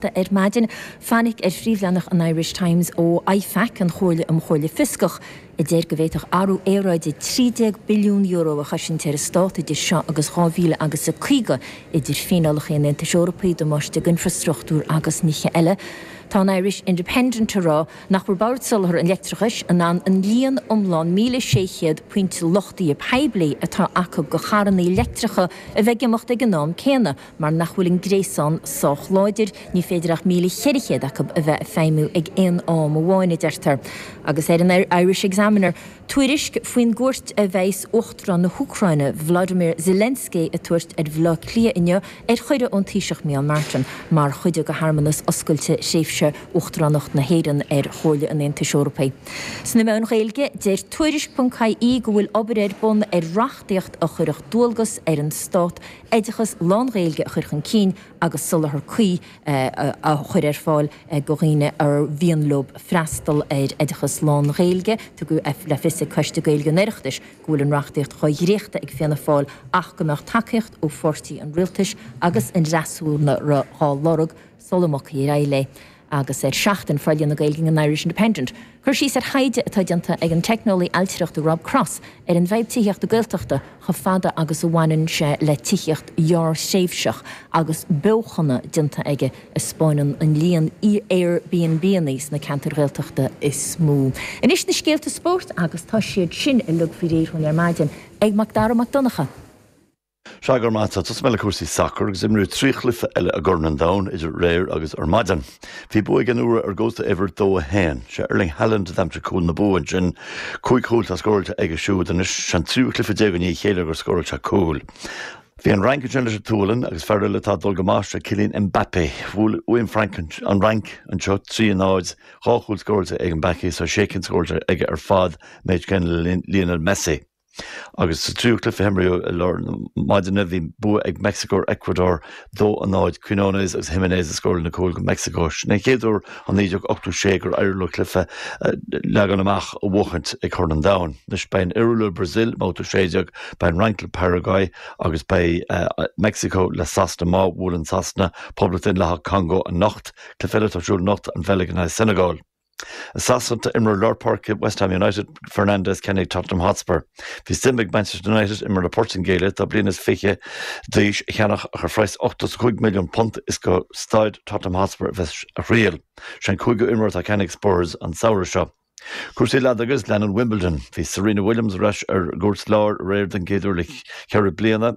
Ar maidin, fainic ar phríomhleathnach an Irish Times ó IFAC, an Chomhairle um Chomhairle Fioscach, a deir go bhféadfadh athrú aeráide €13 billiún a chosaint ar an stát idir seo agus 2000 agus a 50, idir fíneálacha an Aontais Eorpaigh, damáiste d'infrastruchtúr agus nithe eile. Tá an Irish Independent ag rá nach bhfuil Bord Soláthair an Leictreachais in ann an líon iomlán 1600 pointe luchtaithe poiblí atá acu do charrannaí leictreacha a bheith ag imeacht ag an am céanna Mar nach bhfuil an gréasán sách láidir, ní féidir ach míle cheithre chéad acu a bheith ag feidhmiú ag aon am amháin, a deirtear. Agus ar an Irish Examiner, tuairisc faoin gcuairt a bheas Uachtarán na hÚcráine, Volodymyr Zelensky, ag tabhairt ar Bhaile Átha Cliath inniu, ar chuireadh ón Taoiseach Micheál Martin, mar chuid de shearmanas oscailte thréimhse Uachtaránacht na hÉireann ar Chomhairle an Aontais Eorpaigh. Sna meáin Ghaeilge, deir Tuairisc.ie go bhfuil obair ar bun ar reachtaíocht a chuirfeadh dualgas ar an Stát oideachas lán-Ghaeilge a chur chun cinn agus soláthar cuí a chur ar fáil do dhaoine ar mhian leo freastal ar oideachas lán-Ghaeilge. Tugadh le fios ag Coiste Gaeilge an Oireachtais go bhfuil an reachtaíocht dhá dréachtadh ag Fianna Fáil ach go mbeadh tacaíocht ó pháirtithe an Rialtais agus an fhreasúra dhá lorg sula mbogfaí ar aghaidh léi. agus ar Seachtain forlíonadh Gaeilge an Irish Independent cur síos ar thaighde atá déanta ag an teicneolaí ailtireachta Rob Cross ar an bhfadhb tithíochta Gaeltachta chomh fada agus a bhaineann sé le tithíocht ghearrthréimhseach agus beochana déanta aige a spáineann an líon AirBnBannaí sna ceantair Ghaeltachta is mó. Anois na scéalta spóirt agus tá siad sin uilig faoi réir dhúinn ar maidin ag Macdara Mac Donncha. Sea go raibh maith agat, tosóidh mé le cúrsaí sacair agus imríodh trí chluiche eile i gCorn an Domhain idir aréir agus ar maidin. Bhí bua ag an Iorua ar an gCósta Eabhair dó a haon. Sé Erling Haaland a d'aimsigh cúl na bua ansin. Cúig chúl atá scóráilte aige siúd anois. Sé'n tríú cluiche déag i ndiaidh a chéile gur scóráil sé cúl. Bhí an Fhrainc ansin leis an tSualainn agus fear eile atá ag dul go maith, sé Kylian Mbappé. Bhuaigh an Fhrainc an Fhrainc anseo trí náid, dhá chúl scóráilte ag Mbappé so sé cinn scóráilte aige ar fad, méid céanna le Lionel Messi. Agus sa tríú cluiche a himríodh i lár na maidine, bhí bua ag Meicsiceo ar Eacuadór, 2 a 0. Quinones agus Jiménez a scóráil na cúil do Mheicsiceo. Sin é an chéad uair ó 1986 gur éirigh leo cluiche leagan amach a bhuachaint i gCorn an Domhain. Anois, beidh an Iorua leis an mBrasaíl i mBabhta 16, beidh an Fhrainc le Paraguaidh agus beidh Meicsiceo le Sasana. Má bhuaileann Sasana Poblacht Dhaonlathach an Chongó anocht, cluiche eile atá ar siúl anocht, an Bheilg in aghaidh na Seineagáile. I Sasana tá imreoir lár páirce West Ham United, Fernandez, ceannaithe ag Tottenham Hotspur. Bhí suim ag Manchester United imreoir na Portaingéile, atá bliain is fiche d'aois, a cheannach ach ar phraghas £85 milliún is go Staid Tottenham Hotspur a bheas a thriall. Sé an cúigiú imreoir atá ceannaithe ag Spurs an samhradh seo. Cúrsaí leadóige agus leanann Wimbledon. Bhí Serena Williams ar ais ar an gcúirt láir aréir don gcéad uair le ceithre bliana.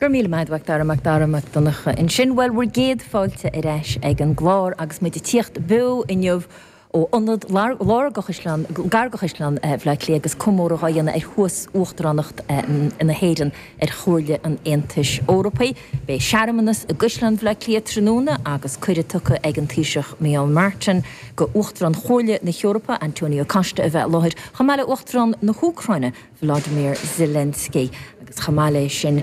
Go raibh míle maith a'd, Mhacdara, Macdara Mac Donncha ansin. Bhuel, bhur gcéad fáilte ar ais ag an gclár agus muid a' tíocht beo inniu ó ionad atá gar do Chaisleán Bhaile Átha Cliath agus comóradh dhá dhéanamh ar thús uachtaránacht na hÉireann ar Chomhairle an Aontais Eorpaigh. Beidh searmanas i gCaisleán Bhaile Átha Cliath tráthnóna agus cuireadh tugtha ag an Taoiseach Micheál Martin go Uachtarán Chomhairle na hEorpa, Antonio Costa a bheith i láthair, chomh maith le Uachtarán na hÚcráine, Volodymyr Zelensky agus chomh maith leis sin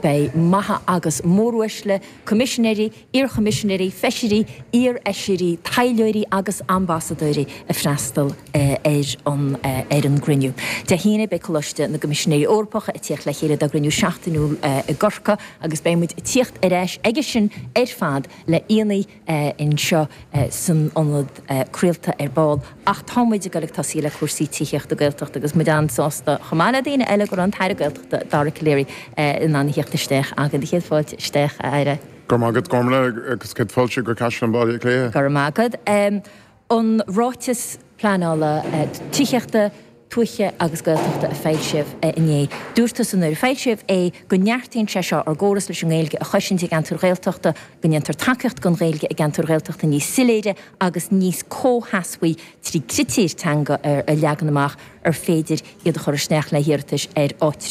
beidh maithe agus móruaisle, coimisinéirí, iarchoimisinéirí, feisirí, iarfheisirí, taidhleoirí agus ambasadóirí ag freastal ar an gcruinniú. Dé hAoine beidh Coláiste na gCoimisinéirí Eorpacha ag tíocht le chéile dá gcruinniú seachtainiúil i gCorcaigh agus beidh muid ag tíocht ar ais aige sin ar fad le aíonna anseo san ionad craolta ar ball ach tá muid ag dul ag tosaí le cúrsaí tithíochta Gaeltachta agus muid an-sásta chomh maith le daoine eile go raibh an tAire Gaeltachta, Dara Calleary, in ann a theacht isteach againn. Do chéad fáilte isteach, a Aire. Go raibh maith agat, Gormfhlaith, agus céad fáilte go Caisleán Bhaile Átha Cliath. Go raibh maith agat. an Ráiteas Pleanála Tithíochta, Tuaithe agus Gaeltachta a foilsíodh inné. Dúirt tusa nuair a foilsíodh é go neartaíonn sé seo ár gcóras leis an nGaeilge a chosaint i gceantair Ghaeltachta, go ndéantar tacaíocht don Ghaeilge i gceantair Ghaeltachta níos soiléire agus níos comhsheasmhaí trí critéir teanga a leagan amach ar féidir iad a chur isteach le hiarratais ar áitreabh.